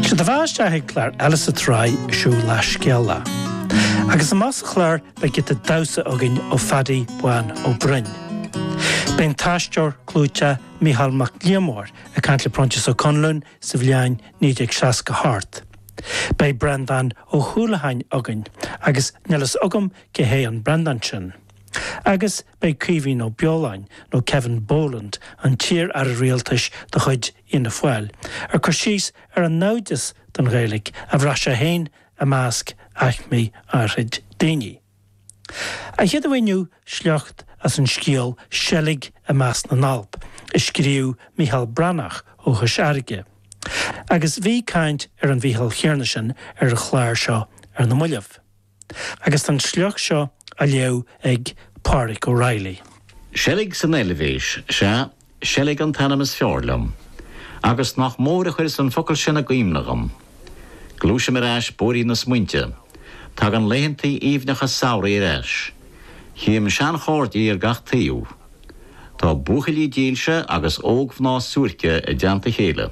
Sé do bheatha isteach ag clár eile sa tsraith Siúlach Scéalach. Agus amach sa chlár beidh giota damhsa againn ó Phaddy Bán Ó Broin. Beidh an t-aisteoir clúiteach Micheál Mac Liammóir ag caint le Proinsias Ó Conluain sa bhliain 1960 thart. Beidh Breandán Ó hUallacháin againn agus níl fhios agam cé hé an Breandán sin. Agus. Beidh Caoimhín Ó Beoláin nó Kevin Boland, an t-iar-aire rialtais de chuid Fhianna Fáil, ag cur síos ar an naimhdeas don Ghaeilge a bhraith sé féin i measc aicmí áithrid daoine. An chéad mhír inniu, sliocht as an scéal 'Seilg i measc na nAlp' a scríobh Mícheál Breathnach ó Chois Fhairrge. Agus bhí caint ar an Mhícheál chéanna sin ar an chlár seo ar na mallaibh. Agus tá an sliocht seo á léamh ag Pádraic Ó Raghallaigh. Seilg san Eilvéis, sea, Seilg an t-ainm is fearr liom. Agus nach mór a chuireas an focal sin i gcuimhne dhom! Gluaisim ar ais bóithrín na smaointe. Tagann laethantaí aoibhneacha samhraidh ar ais. Chím seanchairde ar gach taobh. Tá buachaillí dílse agus ógmhná suairce i dteannta chéile.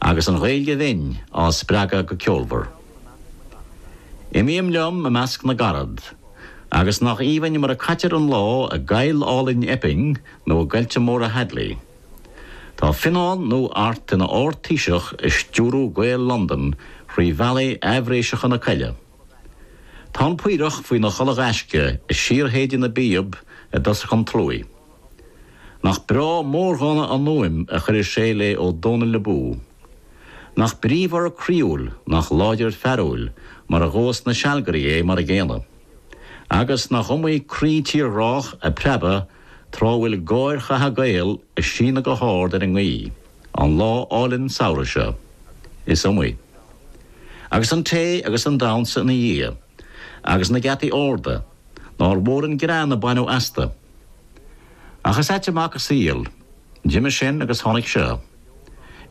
agus an Ghaeilge bhinn á spreagadh go ceolmhar. Imím liom i measc na gcarad, agus nach aoibhinn mar a caitear an lá i gcoill álainn Epping nó i gcoillte móra Hadley. Tá Fionán nó Art ina Ard-Taoiseach ag stiúrú Gael Londan thrí bhealaí aimhréiseacha na coille. Tá an Paorach faoina chulaith ghaisce ag síorshéideadh na bpíob i dtosach an tsluaigh. Nach breá mórdhána an fhuaim a chuireas sé le Ó Dónaill Abú! Nach bríomhar croíúil, nach láidir fearúil, mar a ghabhas na sealgairí é mar an gcéanna. Agus nach iomaí croí tírghrách ag preabadh tráth a bhfuil gáir chatha Gael ag síneadh go hard ar an ngaoith, an lá álainn samhraidh seo. Is iomaí. Agus an tae agus an damhnsa ina dhiaidh. Agus na geataí arda. Nár mhór an greann a baineadh astu. Ach is ait an mac an saol. D'imigh sin agus tháinig seo.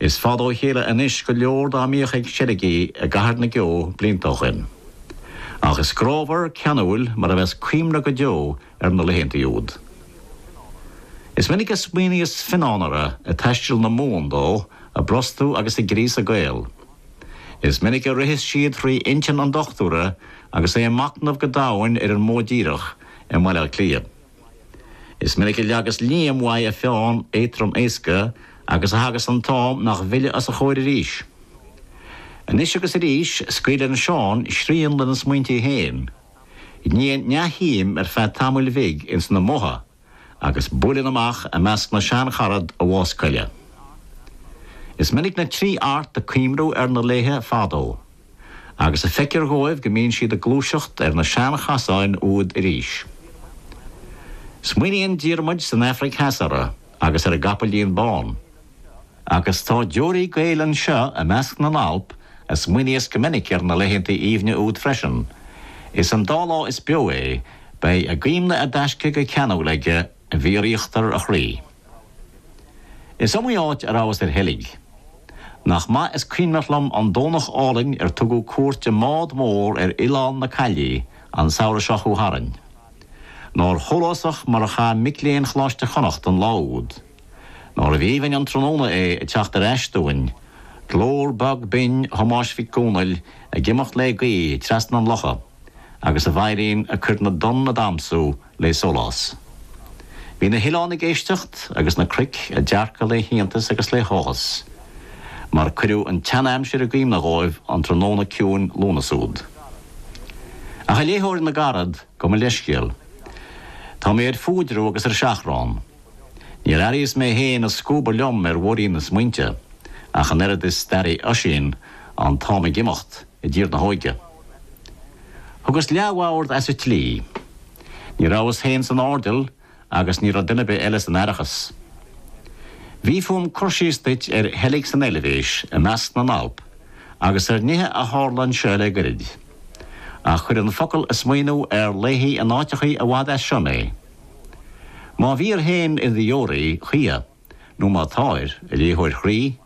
Is fada ó chéile anois go leor dá mbíodh ag seilgí i gCathair na gCeo blianta ó shin. Ach is grámhar, ceanúil mar a bheas cuimhne go deo ar na laethanta úd. Is minic a smaoiníos Fionnán orthu ag taisteal na Mumhan dó ag brostú agus ag gríosadh Gael. Is minic a ritheas siad thrí intinn an dochtúra agus é ag machnamh go domhain ar an modh díreach i mBaile Átha Cliath. Is minic a leagas Liam uaidh a pheann éadrom éasca agus a thagas an t-am nach bhfillfidh os a chomhair arís. Anois agus arís, scaoileann Seán srian lena smaointí féin. Níonn neamhshuim ar feadh tamaill bhig ins na modha agus buaileann amach i measc na seancharad a bhás coille. Is minic na trí Art ag cuimhniú ar na laethe fadó. agus a feictear dhóibh go mbíonn siad ag gluaiseacht ar na seanchasáin úd arís. Smaoiníonn Diarmuid san Aifric Theas orthu agus ar a gcapaillín bán. Agus tá deoraí Gaeil anseo i measc na nAlp a smaoiníos go minic ar na laethanta aoibhne úd freisin. Is an dá lá is beo é, beidh a gcuimhne i dtaisce go ceanúil aige i bhfíoríochtar a chroí. Is iomaí áit a rabhas ar sheilg. Nach maith is cuimhneach liom an Domhnach álainn ar tugadh cuairt i mbád mór ar Oileán na Caillí an samhradh seo chuaigh tharainn. Nár shólásach mar a chaith mic léinn Choláiste Chonnacht an lá úd. Nárbh aoibhinn an tráthnóna é ag teacht ar ais dúinn, glór beag binn Thomáis Mhic Dhomhnaill ag imeacht le gaoth trasna an locha agus a veidhlín ag cur na dtonn ag damhsú le sólás. Bhí na hoileáin ag éisteacht agus na cnoic ag dearcadh le hiontas agus le háthas, mar cuireadh an tseanaimsir i gcuimhne dhóibh an tráthnóna ciúin Lúnasa úd. Ach, a léitheoir na gcarad, gabh mo leithscéal. Tá mé ar fuaidreamh agus ar seachrán. Níor airíos mé féin ag scuabadh liom ar mhuirín na smaointe, ach an oiread is d'airigh Oisín, an t-am ag imeacht, i dTír na hÓige. Thugas leathbhord as an tslí. Ní rabhas féin san airdeall agus ní raibh duine ar bith eile san aireachas. Bhí fúm cur síos duit ar sheilg san Eilbhéis i measc na nAlp agus ar nithe a tharla anseo le goirid. Ach chuir an focal ag smaoineamh ar laethe in áiteachaí i bhfad as seo mé. Má bhír féin i do dheoraí choíche nó má táir, a léitheoir chroí,